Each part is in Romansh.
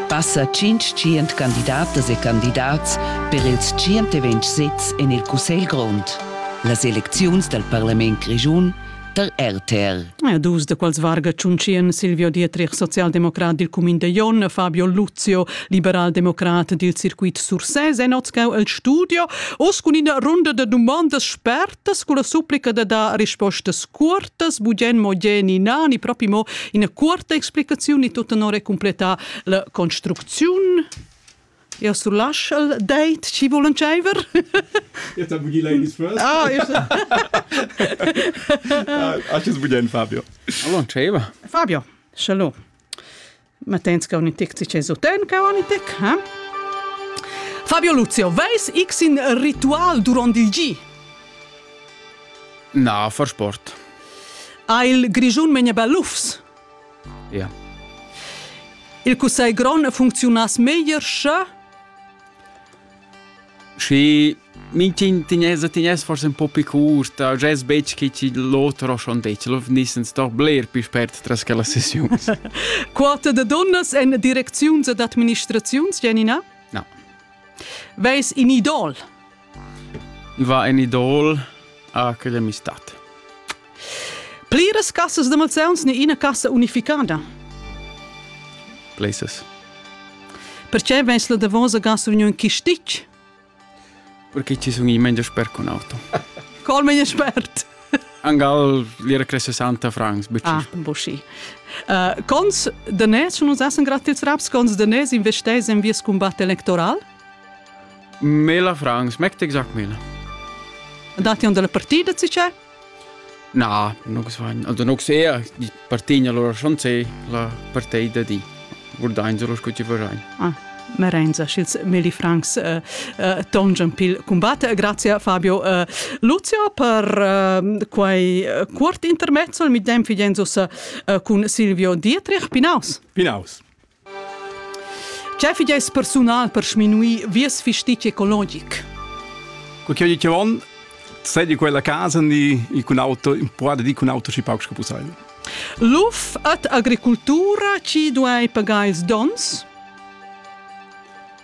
Passa tschintg candidatas e candidats per ils tschient e ventg sezs en il Cussegl grond. Las elecziuns dal parlament grischun tar RTR. Dus da quels varga Tschuntschian Silvio Dietrich, socialdemocrat dil cumin de Jon, Fabio Luzio, liberaldemocrat dil circuit Sursès, è notschau el studio, oz cun ina runda da dumondas spert Tas culla supplica da dar rispostas cuortas, bugen mo ge ni na, ni propi mo ina cuorta explicaziun ni tut tenor e completa la construcziun. Eu surlasch il date, ci vulen tscheiver? Jetzt habe die Ladies first. Ah, ist Ah, Acho bugen, Fabio. Allora, Fabio, shalom. Ma tens che ogni tic ci su ten che ogni tic, eh? Fabio Luzio, veis x in ritual durant il gi? Na, far sport. Ha il Grigiun menia bellufs? Ja. Il Cussegl Grond funcziunas meglier, sche? Schi Minch'in Tinese tigness forsa ün po pü cuorta, gess betg che chi l'oter ho schon detg, lo vgnissen sto bler pü spert tras quellas sessiuns. Quota da donnas en direcziuns ed administraziuns, Janina? No. Veis in idol? Va in idol a quella amistad. Pliras cassas de malsauns ni ina cassa unificada? Places. Perché veis la davosa gas union chi stic? Perché ci sun i meglio sper con auto. Col meglio spert. Angal l'era cresce santa francs, bocci. Ah, bocci. Uh, cons danés non usassen gratis raps, cons danés investes in vies combat electoral? Mela francs, mecte exact mila. Andati on dalla partida, si c'è? Na, non san. Also non sea, di partegna loro chanzé la partei da di. Guardainsa lo sco ci farein. Ah. Merenza sch'ils Meli Franks uh, uh, tongian pil combatte. Grazie Fabio uh, Luzio per uh, quei uh, cuort intermezzo. Il midem figenzus uh, cun Silvio Dietrich. Pinaus. Pinaus. Che fideis persunal per sminuir vies fistich ecologic? Quel che dice von, sei di quella casa ni con auto, può di con auto si pauc capusai. Luf et agricultura ci duai pagais dons?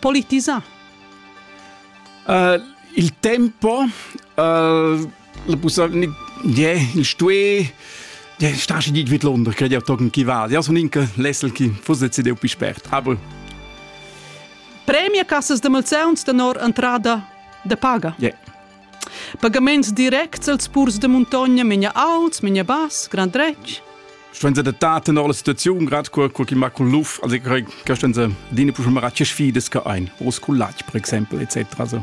politisà? Uh, il tempo, uh, la possibilità, yeah, il stuè, yeah, stasi dit vid Londra, credi auch togen chi va. Ja, son inca lessel chi fusse cedeu pi spert. Aber Premia Cassas de Malzeuns tenor entrada de paga. Yeah. Pagaments directs als purs de muntogna menia alts, menia bass, grand dretg. Stuen se de daten alle Situation grad qua qua chi macul luf, also che stuen se dine pusche mara che sfides che ein, Rosculatsch per exemple etc. Also,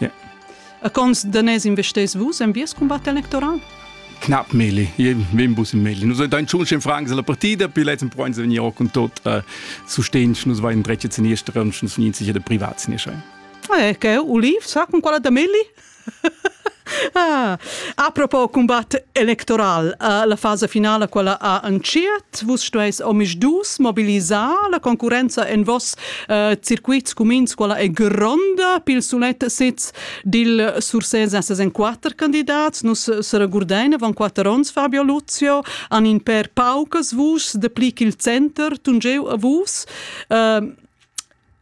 yeah. A cons de nes investes vus en vies combat electoral? Knapp Meli, wem bus im Meli. Nur dein schon schön fragen seiner Partei, bei letzten Freund sind ja auch und tot äh, zu stehen, nur war in Drecke zu nächsten und schon sind sicher der privat zu nächsten. Eh, che uliv sa con quella da Melli? ah, a propos combat electoral, uh, la fase finale quella ha anciet, vus stueis omis dus mobilisar la concurenza en vos uh, circuits comins quella è gronda pil sulet sitz dil Sursés en ses en quatter candidats, nus se regurdein van quatter ons Fabio Luzio, an in per paucas vus de pli ch'il center tungeu a vus. Uh,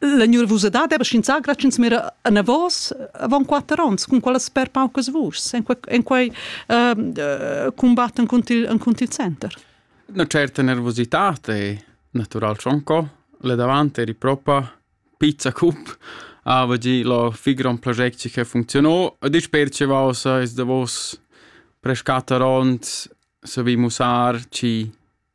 La nervusadad era schinzà gratschens mera anavos avant quatter onns, cun quella sper paucas vuschs, en quei, en quei uh, combatt encunter il, encunter il center. Una certa nervosità è natural schon co. Le davanti eri propa pizza cup ava gi lo figron progetto che funzionò e dis percevausa is davos prescatta ront se vi musar ci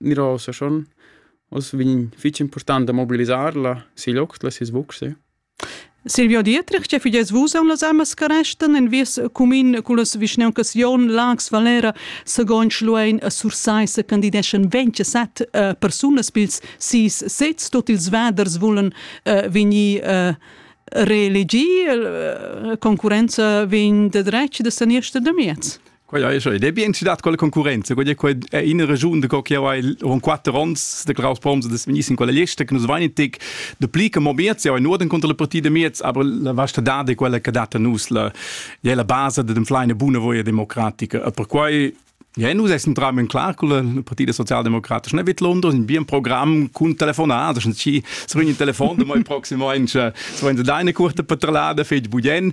Miro se schon. Oz vegn fich important da mobilisar la sil oct, la sis vucse. Silvio Dietrich, che fides vus am las amas caresten en vies cumin cullas vischneuncas Jon, Lax, Valera, segon Schluein a Sursai se candideschen 27 uh, persunas pils sis sets, tot ils vaders vulen uh, vegnir uh, reelegi, uh, concurenza vegn de dretg de sanierste de miez. Quai è schon. Ed è bien, si dat quella concurrenza. Quella è in regiun da che ho quatter ons de Klaus Proms das Minister in quella lista che nus vainetic de pli che mo miez ja nur den contra la partita miez aber la vasta da de quella che data nus la ja la base de dem fleine buona voia democratica e per quai Ja, nus essen tram in klar con la partita socialdemocratische ne vet London in bien Programm cun telefonat, das ci srin in telefon de moi proximamente so in deine kurte patrlade fetg budien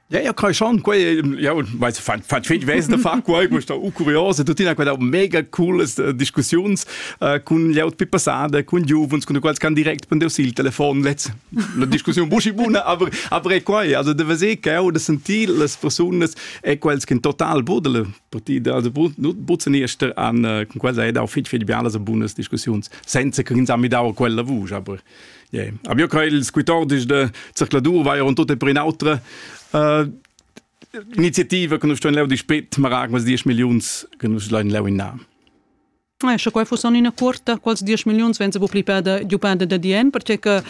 Ja ja kai schon quei jau mai fan fan fit wesen da far quei mo sta u curiose tu tina quella mega cooles äh, discussiuns äh, cun jaut pi passada cun giuvens cun quals can direct prendu il telefon letz la discussiun buschi buna aber aber e quai also de vese che ho de sentir las personas e quels che total budele partida also butzen erster an äh, con quels hai dau fit fit bialas bunas discussiuns senza che ins ha mi dau quella vusch aber Yeah. Aber ja kein il squittor ist der Zirkladur war ja und tot per in autre äh, Initiative che non sto in leu di spet ma rag was 10 millions che non sto in leu in na Eh, sche quai fussan ina cuorta, quals 10 milliuns venza bu plipada giupada da dien, perché che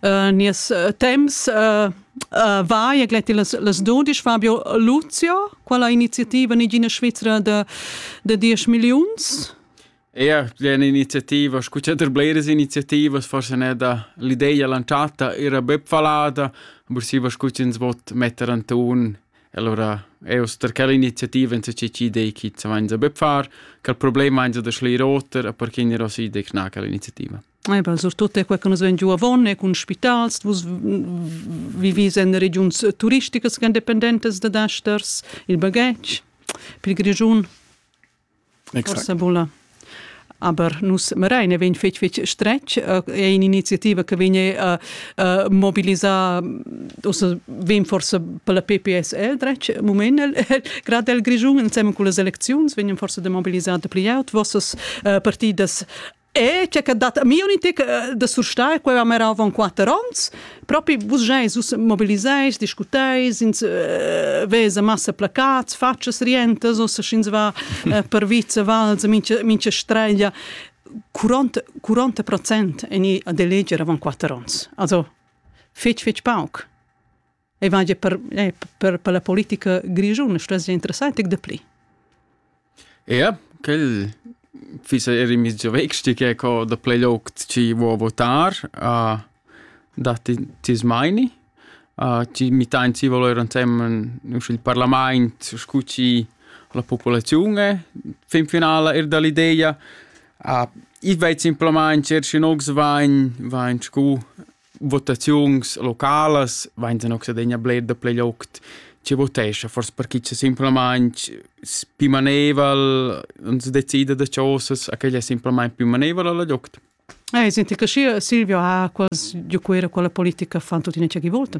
uh, nies eh, temps uh, uh, va e gletti las, las dodisch Fabio Luzio, qual ha iniziativa nigina Svizzera da, da 10 milliuns? Eir d'üna iniziativa, scu cha der bleras iniziativas, forsa neir da l'ideja lantschata eira bep fallada, aber siva scu ch'ins vot metter Anton e lura eau sto der quella iniziativa insatge chi idei chi s'avainza bep far. Quel problem vainza da schleir oter, a perché gnirà sü id ecna quella iniziativa. Eh bel, surtut quai che nus vegn giù avon e cun spitals, vus vivis en regiuns turisticas che dependentas da dasters, il baghetg, pil Grischun. Forsa bulla. Aber nus Marein è vegn fetg fetg stretg, è un'iniziativa che vegn a mobilisar, ussa vegn forsa per la PPSL dretg moment grad el Grischun, ensemen con las elecziuns vegnan forsa da mobilisar da pli aut vossas partidas E c'è che dat a mi un intic eh, da surstare quella mera avon quatter onns propi vus geis us mobiliseis discuteis ins uh, vesa massa placats faccias rientas o se schins va uh, per vice val mincha mincha streglia 40 40 procent en i a deleger avon quatter onns also fetg fetg pauc e vaja per, eh, per, per la politica grischuna stuess interessant de pli. Ja, quel fissa er in mezzo vexti che co da play loc ci vuo votar a da ti smaini a ci mi tain ci volere insieme il parlament scuci la popolazione fin finale er dall'idea a i veit simplement cerci nox vain vain scu votaziuns localas vain se noxadegna bler da plei loct ci votescha fors perché c'è semplicemente più maneval non si decide da cosas a che è semplicemente più maneval alla loct Eh, senti che Silvio ha quasi di quella quella politica fan tutti ne c'è chi vota.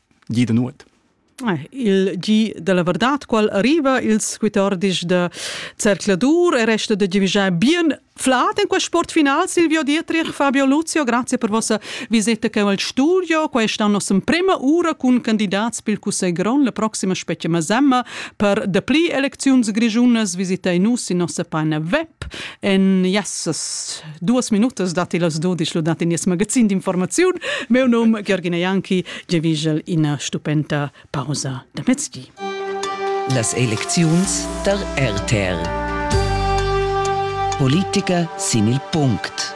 di da nuot. Il gi della verdad qual arriva ils quitordis da Cercladur e resta da givigiare bien flat in quest sport final Silvio Dietrich Fabio Luzio grazie per vostra visita che al studio questa nostra prima ura con candidats pel Cussegl Gron la prossima spettima semma per de pli elecziuns grigiunas visita nus in nostra pagina web en yes duas minutas datti las dudisch dad in nies magazin d'informaziun. Meu num Georgina Janki, giavigel ina stupenda pausa da mezdi. Las elecziuns der RTR. Politiker sin il punct.